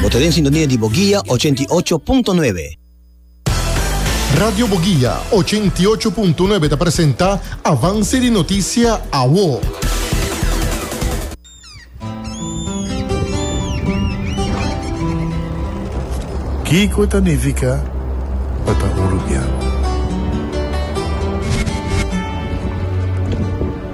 Bo ta den sintonia di Boguia ochenta i ocho punto nuebe. Radio Boguia ochenta i ocho punto nuebe ta presenta Avance di Noticia Awo. Kiko ta nifica pa ta un rubian?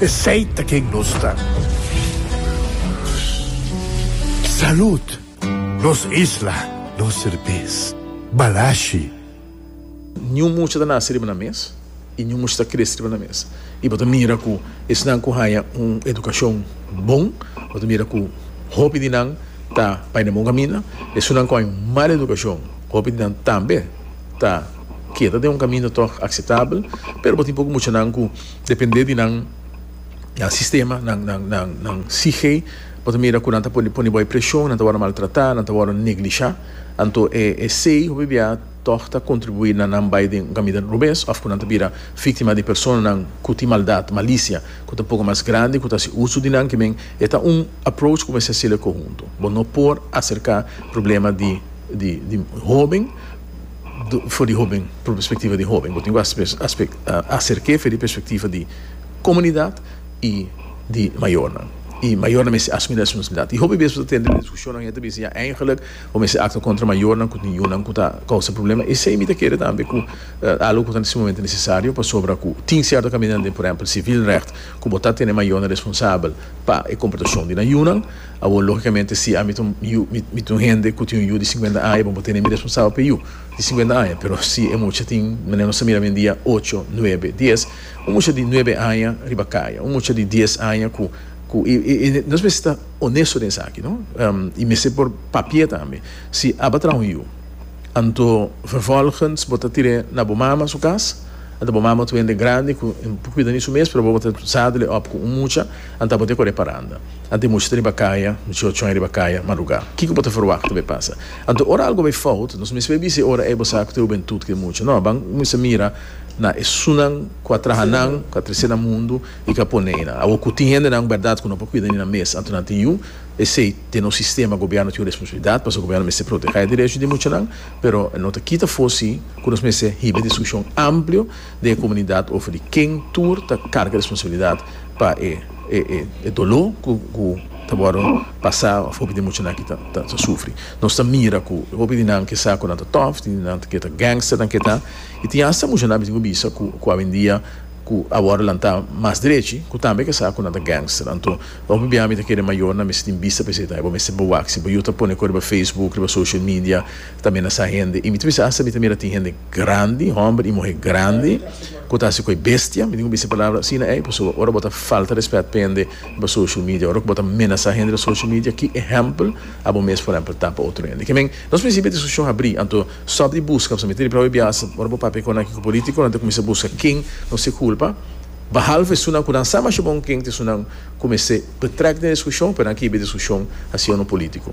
Esey ta ken nos ta. Salud! Nos isla, nos serbes. Balashi. Niun mucha ta nase riba na mes i niun mucha ta krese riba na mes. I bo ta mira ku esnan ku haña un edukashon bon, bo ta mira ku hopi di nan ta bai na bon kaminda. Esunnan ku haña un mal edukashon, hopi di nan tambe ta keda den un kaminda tòg akseptabel. Pero bo tin poko muchanan ku. Depende di nan nan sistema, nan nan nan nan sihe, bo ta mira ku nan ta por pone bai preshon, nan ta wòrdu maltratá, nan ta wòrdu neglishá. Anto e esei hopi biaha tòg ta kontribuí na nan bai den un kaminda robes òf ku nan ta bira víktima di personanan ku tin maldat, malisia, ku ta poko mas grandi, ku ta hasi uso di nan. Kimen e ta un approach ku mester hasil'e kohuntu. Bo no por aserká problema di di di hoben. for di hóben, pur perspektiva di hóben. Bo tin ku aserk'é fe di perspektiva di komunidat i di mayornan. I mayornan mester asumí responsabilidat. I hopi bes bo ta tende nan diskushonnan hende ta bisa ya eingelik bo mester aktua kontra mayornan ku tin yunan ku ta kousa problema. Esei mi ta kere tambe ku algu ku ta na se momentu nesesario pasobra ku tin sierto kamindanan den por ehèmpel sivilrègt ku bo ta tene mayornan responsabel pa e komportashon di nan yunan. Awor, lógikamente, si ami ta un yu, mi ta un hende ku tin un yu di sinkuenta aña, bo bo tene mi responsabel pa e yu di sinkuenta aña. Pero si e mucha tin, manera nos ta mira oyendia, ocho, nuebe, dies, un mucha di nuebe aña riba kaya, un mucha di dies aña ku, ku, i, i, i nos mester ta onesto den esaki, no? I mester por papia tambe. Si aba traha un yu, anto vervolgens bo ta tir'é na bo mama su kas, anto bo mama ta un hende grandi ku e por kuida di su mes, pero bo bo ta sad'le òp ku un mucha. Anta bo te kore paranda. Ante mucha ta riba kaya, mucha ochon e riba kaya, marugá. Kiko bo ta ferwakta bo e pasa? Anto ora algo bai fout, nos mester bai bis'é ora ei bo sa ku ta ruben tut kue mucha. No, ban kumisa mira na esunnan ku a traha nan, ku a trese nan mundu i ku a pone ei nan. Awor ku tin hendenan un bèrdat ku no por kuida ni nan mes, anto nan tin yu esei. Den nos sistema gobièrnu tin un responsabilidat, pasobra gobièrnu mester protehá e derecho di muchanan, pero e no ta kita for si ku nos mester hiba e diskushon amplio, den e komunidat of di ken tur ta karga responsabilidat pa e e doló ku ku ta wòrdu pasá òf hopi di muchanan aki ta ta sufri. Nos ta mira ku hopi di nan kesa ku nan ta tòf, tin di nan ke ta gangster nan ke ta, i tin hasta muchanan bisin ku bisa ku ku awendia ku a wòrdu lantá mas drechi ku tambe kesa ku nan ta gangster. Anto hopi bia mi ta kere mayor nan mester tin bista pa esei ta e bo mester bo wak si bo yu ta pone ku riba facebook, riba social media, Ta mira sa hende, y mi ta bisa hasta mi ta mira tin hende grandi, homber y muhe grandi, cu ta haci cu e bestia, mi tin cu bisa e palabra asina ey, pasobra ora bo ta falta respet pa hende den bo social media, ora cu bo ta menasa hende den social media, ki ehempel abo mes por ehempel ta pa otro hende? Ke men, nos principio di discusion a bri, anto stop di busca, pasobra mi ta ripiao e biaha, ora bo papia cu nan ki cu politico, nan ta cuminsa busca ken nos ta e culpa, bahalf esunnan cu nan sa masha bon ken ta esunnan cu mester betrek den e discusion, pero nan kibi e discusion hacia uno politico.